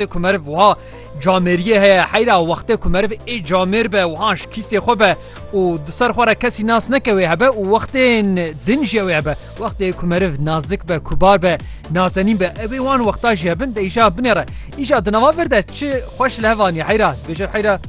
Wextê ku meriv wiha camêriyê heye heyra wextê ku meriv ê camêr be wiha ji kîsê xwe be û di ser xwe re kesî nas neke wê hebe û wextên din jî ew ê hebe. Wextê ku meriv nazik be, kubar be, nazenîn be ew ê wan wexta jî hebin de îja binê re. Îja di nava vir de çi xweş li hev aniye heyra dibêje heyra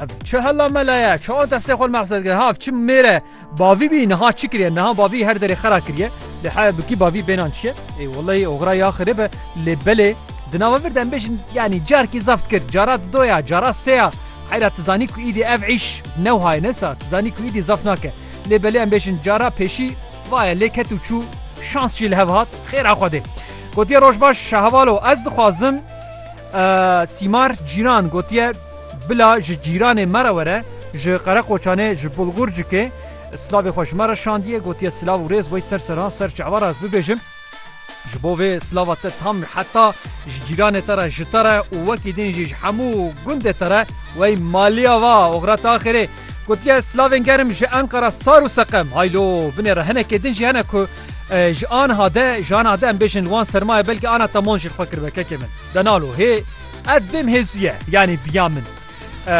ev çi hela mela ye, çawa destê xwe li me hesed kir ha ev çi mêr e. Bavî bî niha çi kiriye niha bavî her derê xera kiriye lê haya bikî bavî bênan çi ye ê welleyî oxira ya xirib e lê belê di nava vir de em bêjin yanî carkî zeft kir cara di do ya cara sê ya heyra tu zanî ku îdî ev îş newha ye nesa tu zanî ku îdî zeft nake lê belê em bêjin cara pêşî va ye lê ket û çû şans jî li hev hat xêra xwedê gotiye roj baş şaheval o ez dixwazim Sîmar Cîran gotiye, Bila ji cîranê me re were, ji Qereqoçanê, ji Bulgurcikê silavê xwe ji me re şandiye, gotiye silav û rêz wey ser serhan ser çi eware ez bibêjim. Ji bo vê silava te tam heta ji cîranê te re, ji te re û wekî din jî ji hemû gundê te re wey maliya va oxira te axirê. Gotiye silavên germ ji Enqera sar û seqem. Haylo binê re hinekê din jî hene ku Ji anha de ji anha de em bêjin li wan sermaye belkî ana te mon jî li xwe kiribe kekê min. Denalo hê ev bêm hêzuye yanî biya min.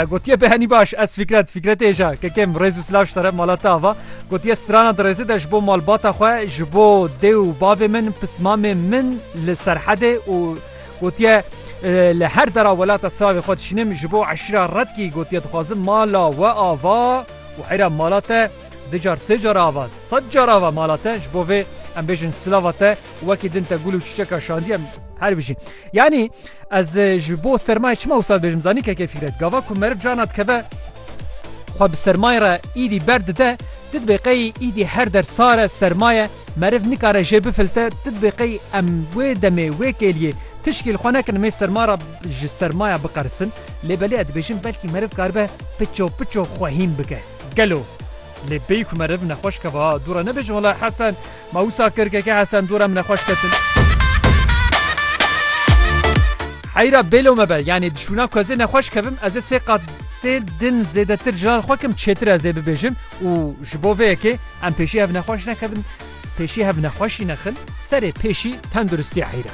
Gotiye behenî baş ez fikret fikretê hêja kekê min rêz û silav ji te re mala te ava gotiye strana dirêzê de ji bo malbata xwe ji bo dê û bavê min pismamê min li serhedê û gotiye li her dera welata silavê xwe dişînim ji bo eşîra redkî gotiye dixwazim mala we ava û heyra mala te Du car, sê car ava, sed car ava mala te ji bo vê em bêjin silava te wekî din te gul û çiçeka şandî em her bijî. Yanî ez e, ji bo sermayê çima wisa bêjim zanî keke fîkret. Gava ku meriv cana dikeve xwe bi sermayê re îdî berdide tu dibê qey îdî her der sare sermaye meriv nikare jê bifilte tu dibê qey em wê demê wê kêliyê tişkî li xwe nekin mê serma re ji sermaya biqerisin lê belê ez dibêjim belkî meriv karibe piço piço xwe hîn bike. Gelo lê bêyî ku meriv nexweş keve ha dû re nebêje wela Hesen ma wisa kir keke Hesen dû re em nexweş ketin. Heyra bêlo me be yanî dişûna ku ez ê nexweş kevim ez ê sê qat tê din zêdetir ji xwe kim çêtir ez ê bibêjim û ji bo vê yekê em pêşî hev nexweş nekevin pêşî hev nexweşî nexin serê pêşî tenduristiya Heyra.